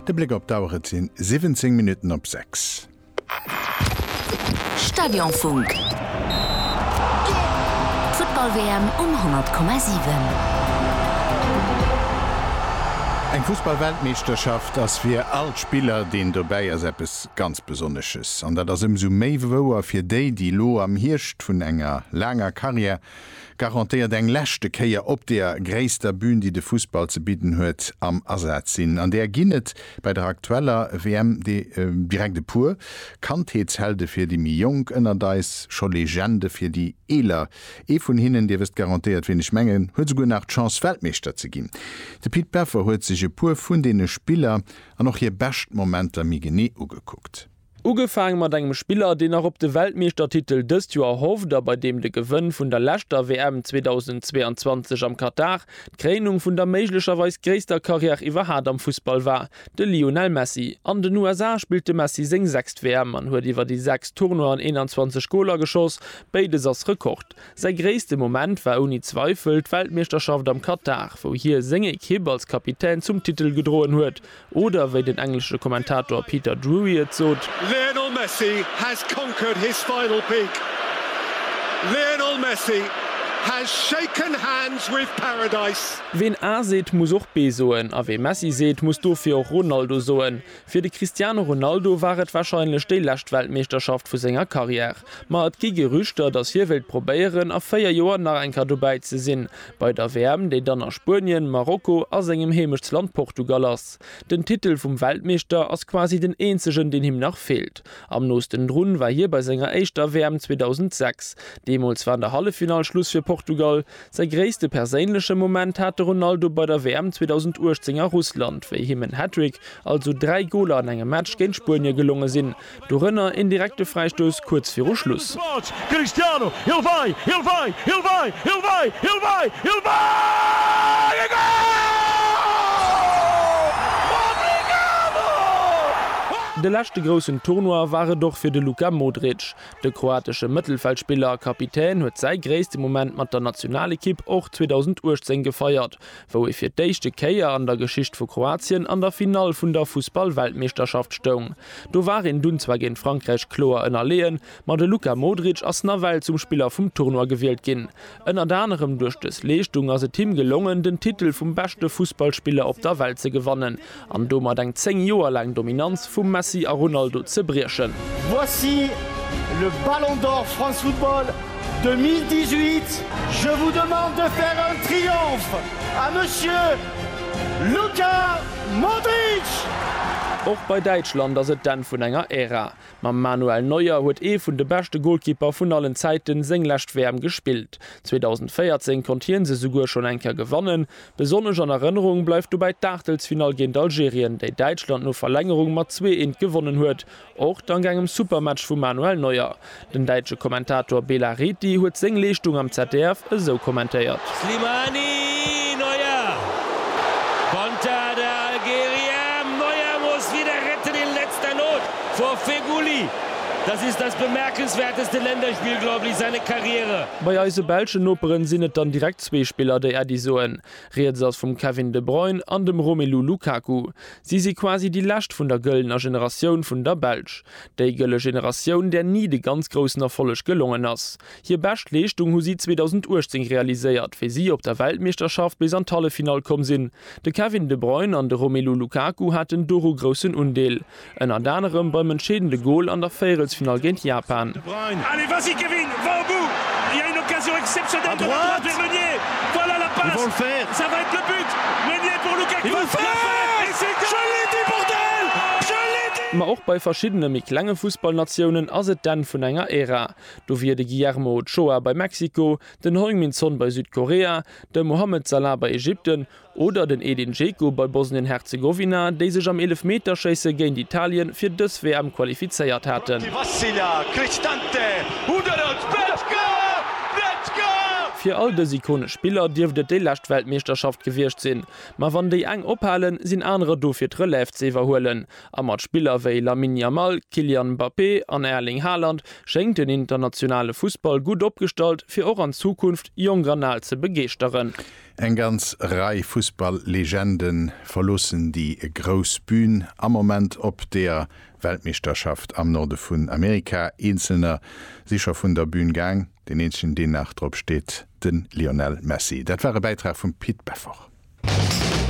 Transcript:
De Bléck op d'Auer, et sinn 17 Minutten op 6. Stadionfunk. D'Futtball-WM um 100,7. Eng Fussball-Weltmeeschterschaft ass fir all Spiller, deen dobäi ass, eppes ganz Besonnesches. An dat ass ëmsou méi wouer fir déi, déi elo am Hierscht vun enger laanger Karriär garantéiert eng leschte Kéier op deer gréisster Bühn, déi de Fussball ze bidden huet, am Asaz sinn. An där ginn et bei der aktueller WM direkt e puer, Kandheetshelde fir déi méi Jonk ënnert eis, scho Legende fir déi Eeler. Ee vun hinnen, Dir wësst garantéiert, wien ech mengen, huet esouguer nach d'Chance, Weltmeeschter ze ginn. De Pit Peffer huet sech e puer vun deene Spiller an och hir bescht Momenter méi genee ugekuckt. Ugefaang mat engem Spiller, deen nach op de Weltmeeschtertitel dëst Joer hofft a bei deem de Gewënn vun der leschter WM 2022 am Katar d'Kréinung vun der méiglecherweis gréisster Karriär iwwerhat am Fussball war, de Lionel Messi. An den USA spillt de Messi seng sechst WM an huet iwwer déi sechs Tournoien 21 Goler geschoss, béides ass Rekord. Säi gréisste Moment war ouni Zweifel d'Weltmeeschterschaft am Katar, wou hie seng Ekipp als Kapitän zum Titel gedroen huet. Oder wéi den englesche Kommentator Peter Drury et sot. Lionel Messi has conquered his final peak. Lionel Messi has shaken hands with paradise. Ween A seet, muss och B soen, a wee Messi seet, muss dofir och Ronaldo soen. Fir de Cristiano Ronaldo war et warscheinlech déi lescht Weltmeeschterschaft vu senger Karriär. Ma et gi Gerüchter, datt hie wéilt probéieren, a 4 Joer nach eng Kéier dobäi ze sinn. Bei der WM, déi dann a Spuenien, Marokko a sengem Heemechtsland Portugal ass. Den Titel vum Weltmeeschter ass quasi den eenzegen, deen him nach feelt. Am noosten drun war hie bei senger éischter WM 2006. Deemools war an der Halleffinall Schluss fir Portugal. Säi gréisste perséinleche Moment hat de Ronaldo bei der WM 2018 a Russland, wéi him en Hattrick, also dräi Goler an engem Match, géint Spuenie gelonge sinn. Dorënner een direkte Fräistouss kuerz viru Schluss. De leschte groussen Tournoi war et och fir de Luka Modric. De kroatesche Mëttelfeldspiller a Kapitän huet säi gréisste Moment mat der Nationalekipp och 2018 gefeiert, wou ee fir d'éischte Kéier an der Geschicht vu Kroatien an der Finall vun der Fussballweltmeeschterschaft stoung. Do war een dunn zwar géint Frankräich kloer ënnerleeën, ma de Luka Modric ass nawell zum Spiller vum Tournoi gewielt ginn. Ënnert anerem duerch dës Leeschtung ass et him gelongen, den Titel vum beschte Fussballspiller op der Welt ze gewannen. an domat eng 10 Joer laang Dominanz vum Messi a Ronaldo ze briechen. Voici le Ballon d'Or France Football 2018. Je vous demande de faire un triomphe à Monsieur Luka Modric! Och bei Däitschland ass et d'Enn vun enger Ära. Mam Manuel Neuer huet ee vun de beschte Golkipper vun allen Zäiten seng lescht WM gespillt. 2014 konnt hien se souguer schonn eng Kéier gewannen, Besonnesch an Erënnerung bleift dobäi d'Aachtelsfinall géint Algerien, déi Däitschland no Verlängerung mat zwee eent gewonnen huet, och dank engem super Match vum Manuel Neuer. Den däitsche Kommentator Bela Reti huet seng Leeschtung am ZDF esou kommentéiert. Slimani! Neuer! Konter der Algerier! Neuer muss wieder retten in letzter Not vor Feghouli! Das ist das bemerkenswerteste Länderspiel, glaube ich, seine Karriere! Bei eise belschen Noperen sinn et dann direkt zwee Spiller, déi Äddi soen. Rieds ass vum Kevin de Bruyne an dem Romelu Lukaku. Si si quasi déi lescht vun der gëllener Generatioun vun der Belsch. Déi gëlle Generatioun, där ni de ganz groussen Erfolleg gelongen ass. Hir bescht Leeschtung hu si 2018 realiséiert, wéi si op der Weltmeeschterschaft bis an d'Halleffinall komm sinn. De Kevin de Bruyne an de Romelu Lukaku haten doru groussen Undeel. Ënnert anerem beim entscheedende Gol an der Véierelsfinall géint Japan. Ma och bei verschiddene méi klenge Fussballnatiounen ass et d'Enn vun enger Ära. Do wier de Guillermo Ochoa bei Mexiko, den Heung-Min Son bei Südkorea, de Mohamed Salah bei Ägypten, Oder den Edin Dzeko bei Bosnien-Herzegowina, déi sech am Eelefmeterschéisse géint Italien fir dës WM qualifizéiert haten. Fir all dës ikonesch Spiller dierft et déi lescht Weltmeeschterschaft gewiescht sinn. Ma wann déi eng ophalen, sinn anerer do fir d'Relève ze iwwerhuelen. A mat Spiller wéi Lamine Yamal, Kylian Mbappé an Erling Haaland schéngt den internationale Fussball gutt opgestallt, fir och an Zukunft jonk an al ze begeeschteren. Eng ganz Rei Fussball-Legende verloossen déi grouss Bün am Moment op deer Weltmeeschterschaft am Norde vun Amerika. Eenzelner si scho vun der Bün gaang, deen eenzegen deen nach drop steet, de Lionel Messi. Dat war e Bäitrag vum Pit Beffort.